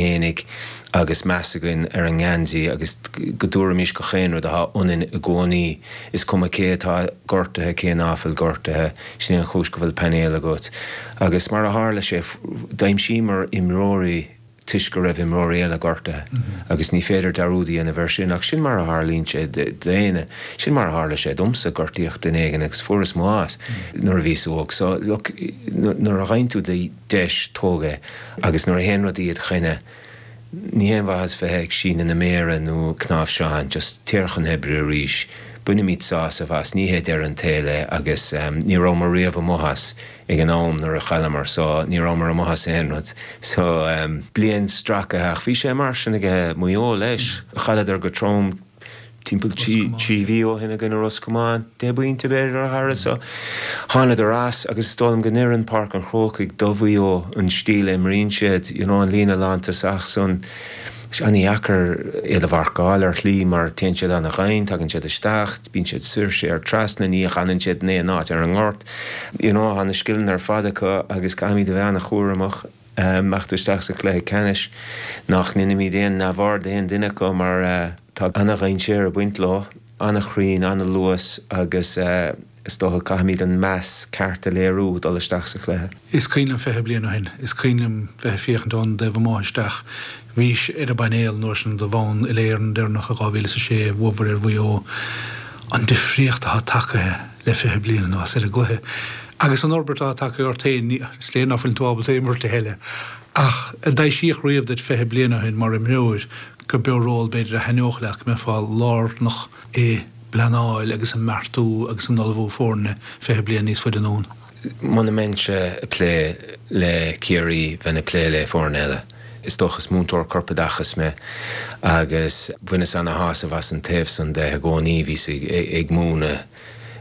aonaigh agus meas againn ar an ngeansaí agus go dtabharfaimis gach aon rud atá ionainn i gcónaí, is cuma cé atá gortaithe cé ná fuil gortaithe, sin é an chúis go bhfuil painéal agat. Agus mar a tharla sé, d'aimsíomar imreoirí toisc go raibh imreoirí eile gortaithe agus ní féidir dearúd a dhéanamh air sin ach sin mar a tharlaíonn sé d'éinne. Sin mar a tharla sé domsa, gortaíodh duine éigin agus fuaireas m'áit nuair a bhíos óg. So, look, nuair a gheibheann tú do. dheis tóg í agus nuair a théann rudaí id choinne ní haon mhaitheas bheith ag síneadh na méara nó cnáimhseán, just téir chun hoibre arís, bainimid sásamh as, ní hé deireadh an tsaoil é agus ní rabhamar riamh amuigh as ag an am nuair a chailleamar so ní rabhamar amuigh as aon rud so. Bliain stracaithe ach bhí sé mar sin aige Maigh Eo leis, chailleadar go trom. Timpeall trí mhí ó shin i gcoinne Ros Comáin, deich bpointe, b'fhéidir, a tharla seo. Thánadar as agus is dóigh liom go n-oireann Páirc an Chrócaigh do Mhaigh Eo, an stíl a imríonn siad, you know an líne lántosach san. Is an-dheacair iad a mharcáil ar shlí mar téann siad ana-dhoimhin, tagann siad isteach, bíonn siad soir, siar, trasna, ní fhanann siad in aon áit ar an ngort, you know, tá na scileanna ar fad acu agus caithfimid a bheith an-chúramach. ag imeacht isteach sa chluiche ceannais, nach ndeinimíd aon neamhaird d'aon duine acu mar tá ana-dhainséar ag baint leo, ana-chruinn, ana-luas agus is dócha go caithfimíd an meas ceart a léiriú dul isteach sa chluiche. Is cuimhin liom fiche bliain ó shin, is cuimhin liom bheith ag féachaint ón dtaobh amuigh isteach, Bhís ar an bpainéal an uair sin do bhonn uile-Éireann deireanach i 2006, bhuafar ar Mhaigh Eo. An difríocht atá tagtha le fiche bliain anuas ar an gcluiche agus an fhorbairt atá tagtha ort féin, is léir ná fuil tú ábalta a imirt a thuilleadh. Ach ar dtaibhsíodh riamh duit fiche bliain ó shin mar imreoir gurb eo ról b'fhéidir a thaitneodh leat, go mbeifeá lárnach i bpleanáil agus i mbeartú agus in ullmhú foirne fiche bliain níos faide anonn? Muna mbeinnse ag plé le Ciarraí, bheinn ag plé le foireann eile, is dócha. Is múinteoir corpoideachais mé agus bhaineas ana shásamh as an taobh san de i gcónaí. Bhíos ag múineadh,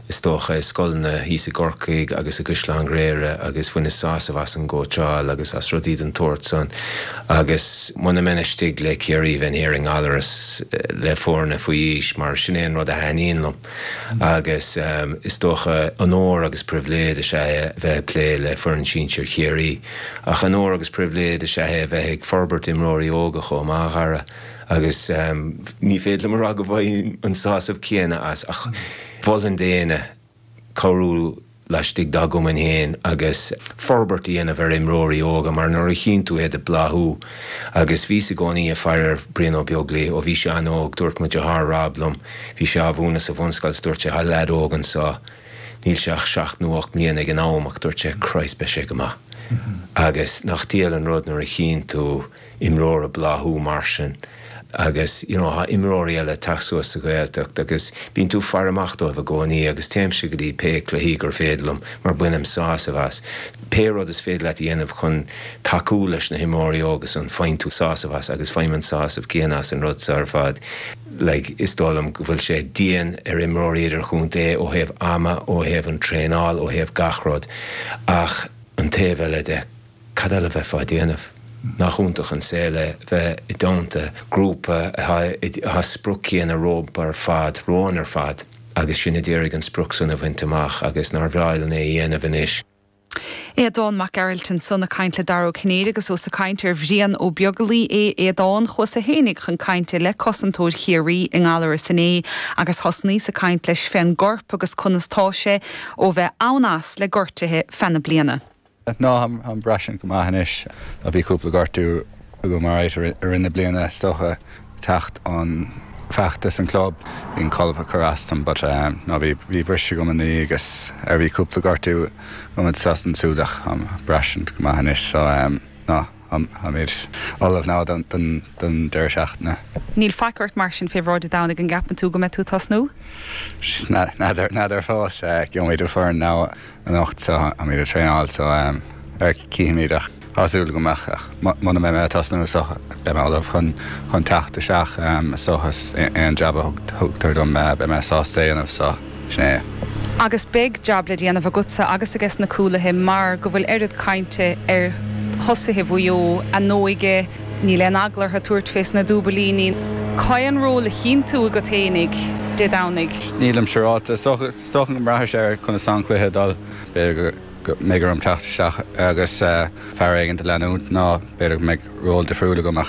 is dócha, i scoileanna thíos i gCorcaigh agus i gCaisleán Ghréire agus bhaineas sásamh as an gcóitseáil agus as rudaí den tsórt san agus muna mbeinn istigh le Ciarraí, bheinn thiar i nGallaras le foirne faoi aois mar sin é an rud a thaitníonn liom. agus is dócha onóir agus pribhléid is ea é a bheith ag plé le foireann sinsir Chiarraí, ach onóir agus pribhléid is ea é a bheith ag forbairt imreoirí óga chomh maith, a Dhara, agus. ní féidir liom a rá go bhfaighim an sásamh céanna as, ach mholfainn d'éinne cabhrú. laistigh dá gcumainn féin agus forbairt a dhéanamh ar imreoirí óga mar nuair a chíonn tú iad ag bláthú agus bhíos i gcónaí ag faire ar Bhrian Ó Beaglaoi ó bhí sé an-óg, dúirt mo dheartháir Rob liom, bhí sé á mhúineadh sa bhunscoil 's dúirt sé, tá leaid óg anseo, níl sé ach seacht nó ocht mbliana ag an am ach dúirt sé, Christ, beidh sé go maith. Agus nach diail an rud nuair a chíonn tú imreoir ag bláthú mar sin. Agus, you know, tá imreoirí eile ag teacht suas sa Ghaeltacht agus bíonn tú ag faire amach dóibh i gcónaí agus téimse go dtí pé cluichí gur féidir liom mar bainim sásamh as. Pé rud is féidir leat a dhéanamh chun tacú leis na himreoirí óga san, faigheann tú sásamh as agus faighim an sásamh céanna as an rud so ar fad. Like, is dóigh liom go bhfuil sé dian ar imreoirí idirchontae ó thaobh ama, ó thaobh an traenáil, ó thaobh gach rud ach an taobh eile de, Cad eile a bheifeá ag déanamh? Nach iontach an saol é bheith i dteannta grúpa atá sprioc chéanna rompu ar fad, romhainn ar fad, agus sinn a d'iarraidh an sprioc san a bhaint amach, agus nár bhreá linn é a dhéanamh anois? Aodán Mac Gearailt ansan ag caint le Dara Ó Cinnéide agus ós ag caint ar Bhrian Ó Beaglaoi é Aodán, chuasa fhéinig chun cainte le cosantóir Chiarraí i nGallaras inné agus thosnaíos ag caint leis fén gcorp agus conas tá sé ó bheith ann as le gortuithe feadh na bliana. Táim ag braistint go maith anois. Bhí cúpla gortú agam mar a deir tú i rith na bliana is dócha, teacht ón bhfeachtas an chlub, bhí an colpa ag cur as dom but ná bhí bhí briseadh agam an agus ar bhí cúpla gortú agam anso is ansúd ach táim ag braistint go maith anois so ná. táimid ullamh ná don deireadh seachtaine. Níl faic ort mar sin fé bhráid Dé Domhnaigh an gceapann tú go mbeidh tú ag tosnú? N'fheadar fós. Gheobhaimid an foireann ná anocht so táimid ag traenáil so cífimid ach tá súil agam ach muna mbeidh mé ag tosnú so beidh mé ullamh chun teacht isteach so is aon jab a thugtar dom beidh mé sásta é dhéanamh so. Sea, agus beidh jab le déanamh agatsa agus aige sna cúlaithe mar go bhfuil oiread cainte ar thosaithe Mhaigh Eo a n-óige, níl aon eagla orthu tabhairt fé sna dúbailíní. Cad é an ról a chíonn tú agat fhéinig Dé Domhnaigh. Nílim siúráilte, is dócha go mbraitheann sé ar conas atá an cluiche ag dul. B'fhéidir go mbeidh orm teacht isteach agus fear éigin a leanúint nó b'fhéidir go mbeidh ról difriúil agam ach.